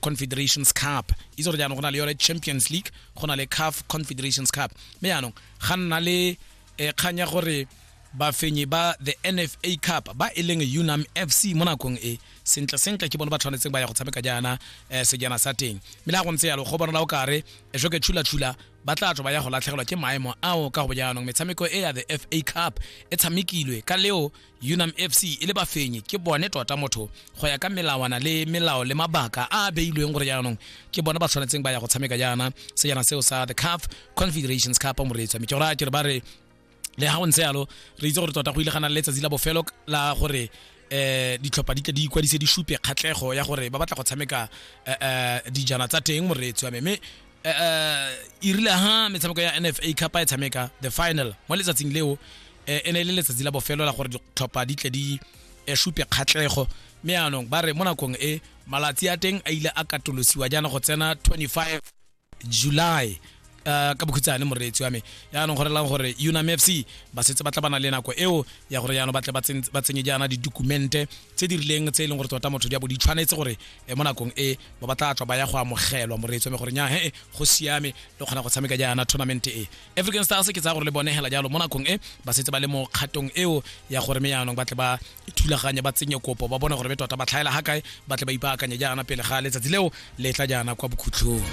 confederations cup itse gore jaanong go na le yone champions league go na le caf confederations cup mme jaanong ga nna le eh, kgang ya gore bafenyi ba the nfa cup ba e leng unam fc mo nakong e sentle sentle ke bone ba tshwanetseng ba ya go tshameka jaana eh, sejana sa teng mme le go ntse yalo go bonala o kare e joke tshula-tshula ba tla tswa ba ya go latlhegelwa ke maemo ao ka go jaanong metshameko e ya the fa cup e tshamekilwe ka leo unam fc e le bafenyi ke bone tota motho go ya ka melawana le melao le mabaka a a beilweng gore jaanong ke bone ba tshwanetseng ba ya go tshameka jaana sejana seo sa the caf confederations cup moreetswa mme ke gore a ke re ba re le ga go ntse yalo re itse gore tota go ile ga na le letsatsi la bofelo la gore eh ditlhopha di tle di ikwadise di supe kgatlhego ya gore ba batla go tshameka eh, eh, dijana tsa teng moreetsi wa me mme eh, eh, e rile ha metshameko ya nfa cup e tshameka the final mo letsatsing leo eh, e ne e le letsatsi la bofelo la gore ditlhopha di tle di supe kgatlego mme yaanong ba re mo nakong e malatsi a teng a ile a katolosiwa jaana go tsena 25 july Eh, ka bokhutsane moreetsi wa me yaanong go relang gore unam f c ba setse ba tla bana le nako eo ya gore yaanong ba tle ba tsenye jaana didokumente tse di rileng tse e leng gore tota motho di a bo di tshwanetse gore eh, mo nakong e ba ba tla tswa ba ya go amogelwa moreetso mme gore nya he go siame le kgona go tshameka jaana tournament e african stars ke tsaya gore le bone hela jalo mo nakong e ba setse ba le mo kgatong eo ya gore me yaanong ba tle ba thulaganye ba tsenye kopo ba bone gore be tota ba tlhaela ga kae ba tle ba ipaakanye jaana pele ga letsatsi leo le tla jaana kwa bokhutlhong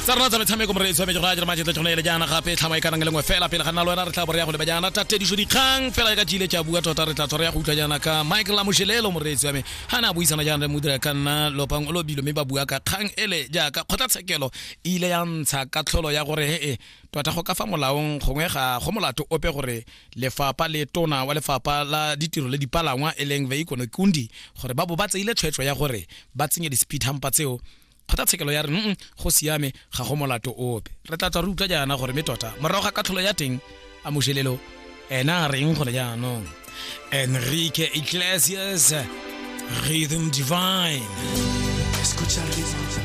tsa rona tsa metshameko mo re tshwanetse go a dira majetle tšhono ele jaana gape tlhama e kanang le lengwe fela pele ga nna le wena re tla boreya go leba jaana tatediso dikgang fela ka jile tša bua tota re tla tshwara ya go utlwa jaana ka mike lamošelelo moreetsi wa me ga ne a buisana jaana le modira ka nna lopang o lobilo mme ba bua ka kgang ele jaaka kgotlatshekelo e ile ya ntsha ka tlholo ya gore ee Tota go ka fa molaong gongwe ga go molato ope gore lefapa le tona wa lefapa la ditiro le dipalangwa e leng Veikono Kundi gore ba bo ba tseile tshwetso ya gore ba tsenye di-speed humper tseo kgotlatshekelo ya re mm go siame ga go molato ope re tla tswa re utlwa jaana gore mme tota morago ga katlholo ya teng a mošelelo ena a reng gone jaanong enrique iglesias rhythm divine Escucha el ritmo.